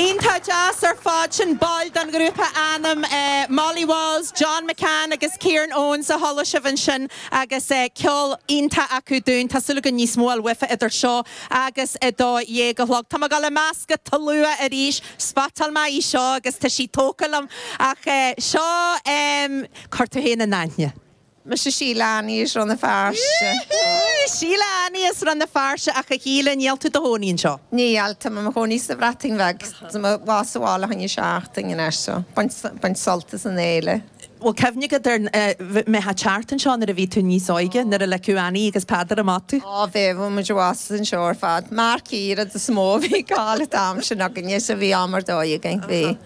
Iontach deas ar fad sin baill den ghrúpa ainm Molly Walls, John McCann agus Kieran Owens a chuala sibh ansin agus ceol iontach acu dúinn. Tá súil agam níos mó a fháil uafa idir seo agus a dó dhéag a chlog. Tá mé ag gabháil i measc an tslua arís. Spotáil mé í seo agus tá sí tógtha liom ach seo, em, cuir tú féin in aithne. Mise Sheila Annie as Rann na Feirste. Sheila Annie as Rann na Feirste ach a Sheila níl tú do chónaí anseo? Níl, tá mé mo chónaí sa Bhreatain Bheag, tá mé ar ais sa bhaile fá choinne seachtain anois so, baint sult as an fhéile. Bhfuil cuimhne agat ar a bheith ag teacht anseo nuair a bhí tú níos óige, nuair a ligeadh Annie agus Peadar amach tú. Á bhí, bhí muid i bhfad anseo ar fad, marquee is mó a bhí ag gabháil an t-am sin againne so bhí am ar dóigh againn, bhí.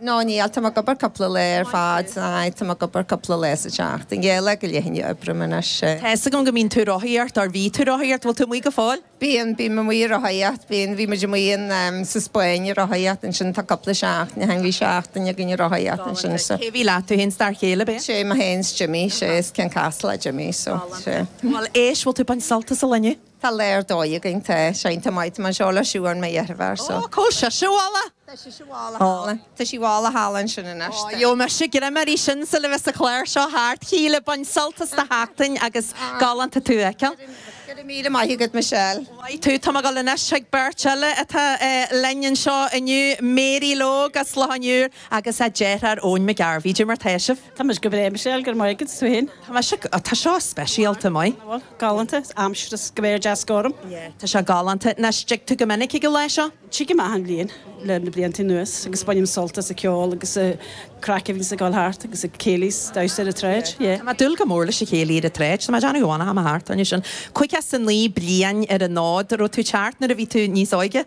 No, níl. Tá mé ag obair cúpla lá ar fad. Aye, tá mé ag obair cúpla lá sa tseachtain. Yeah, lá go leith anois a oibrím anois. Tá fhios agam go mbíonn tú ag rothaíocht or, or bhí tú ag rothaíocht, bhfuil tú amuigh go fóill? Bíonn, bím amuigh ag rothaíocht, bíonn. Bhí muid amuigh in ehm, sa Spainn ag rothaíocht ansin tá cúpla seachtain ó shin, bhí seachtain againn ag rothaíocht ansin so. Cé bhí leat? Tú fhéin 's d'fhear chéile, ab ea? Sé, mé fhéin 's Jimmy, sé, is keen cycler Jimmy so, sé. Bhuel, éist, bhfuil tú ag baint sult as an lá inniu? Tá lá ar dóigh againn tá. Iontach maith tá mé anseo le Siobhán mo dheirfiúr so. Ó, cá bhfuil sí? Tá sí i bhfolach! Tá sí i bhfolach thall. Tá sí i bhfolach thall ansin anois. Ó, gheobhaidh mise greim uirthi sin sula bheas an clár seo thart. Shíle, bain sult as do sheachtain agus galánta tú a fheiceáil. Go raibh míle maith agat Michelle. Maith thú. Tá mé ag dul anois chuig beirt eile atá linn anseo inniu, Mary Logue as Loch an Iúir agus a deartháir Eoin Mac Gairbheith. Caidé mar tá sibh. Tá mise go breá, Michelle, go raibh maith agat. Tú féin? Tá mise go, tá seo speisialta maith. Bhal, galánta, is aimsir is an spéir deas gorm. Yeah, tá seo galánta. Anois, dtig tú go minic ag an lá seo? Tigim achan bhliain, leis na blianta anuas agus bainim sult as an cheol agus an chraic a bhíonns ag dul thart agus an céilí 's damhsa ar an tsráid. Yeah. Tá mé ag dúil go mór leis an chéilí ar an tsráid. Tá mé ag déanamh amháin a tháim thart, anois sin, caoga 's a naoi bliain ar an fhód. Raibh tú ag teacht nuair a bhí tú níos óige?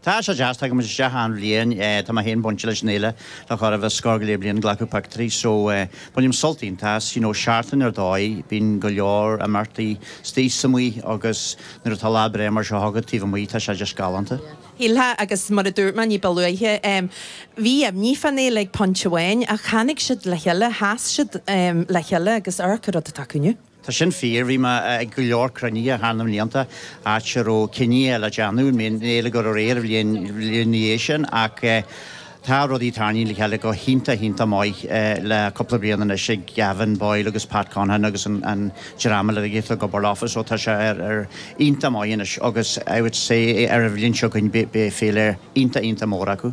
Tá sé deas, tagaim isteach achan bhliain, tá mé féin bainte leis an fhéile le corradh agus scór go leith bliain, ag glacadh pictiúirí so bainim sult iontach as, you know seachtain ar dóigh bíonn go leor imeachtaí istigh is amuigh agus nuair atá lá breá mar seo agat taobh amuigh tá sé just galánta. Shílfeá agus mar a dúirt mé ní ba luaithe bhí imní fán fhéile ag pointe amháin ach tháinig siad le chéile, sheas siad le chéile agus amharc an rud atá acu inniu. Tá sin fíor. Bhí mé ag go leor cruinnithe thar na mblianta, áit a raibh cinneadh le déanamh, an mbeadh an fhéile ag gabháil ar aghaidh an bhliain ina dhiaidh sin, ach tá rudaí tarraingthe le chéile go hiontach, iontach maith le cúpla bliain anois ag Gavin Boyle agus Pat Conaghan agus an dream eile uilig atá ag obair leofa, so tá sé ar, ar, iontach maith anois agus I would say ar an bhliain seo chugainn beidh féile iontach, iontach mór acu.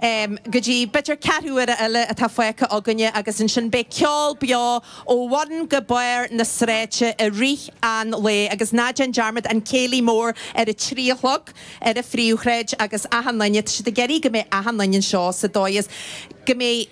go dtí b'fhéidir ceathrú uaire eile atá fágtha againne agus ansin beidh ceol beo ó bhun go barr na sráide i rith an lae agus ná déan dearmad an Céilí Mór ar a trí a chlog ar an phríomhshráid agus achan duine, tá siad ag iarraidh go mbeidh achan duine anseo sa dóigh is go mbeidh.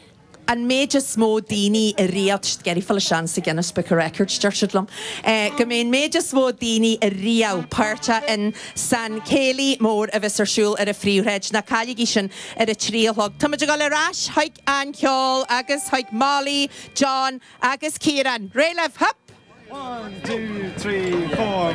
an méid is mó daoine ariamh ag iarraidh fáil isteach sa Guinness Book of Records, deir siad liom, eh go mbeidh an méid is mó daoine ariamh páirteach in san céilí mór a bheas ar siúl ar an phríomhshráid, ná cailligí sin, ar a trí a chlog. Táimid ag goil ar ais chuig an cheol agus chuig Molly, John agus Ciarán. Réidh libh! Hup! One, two, three, four.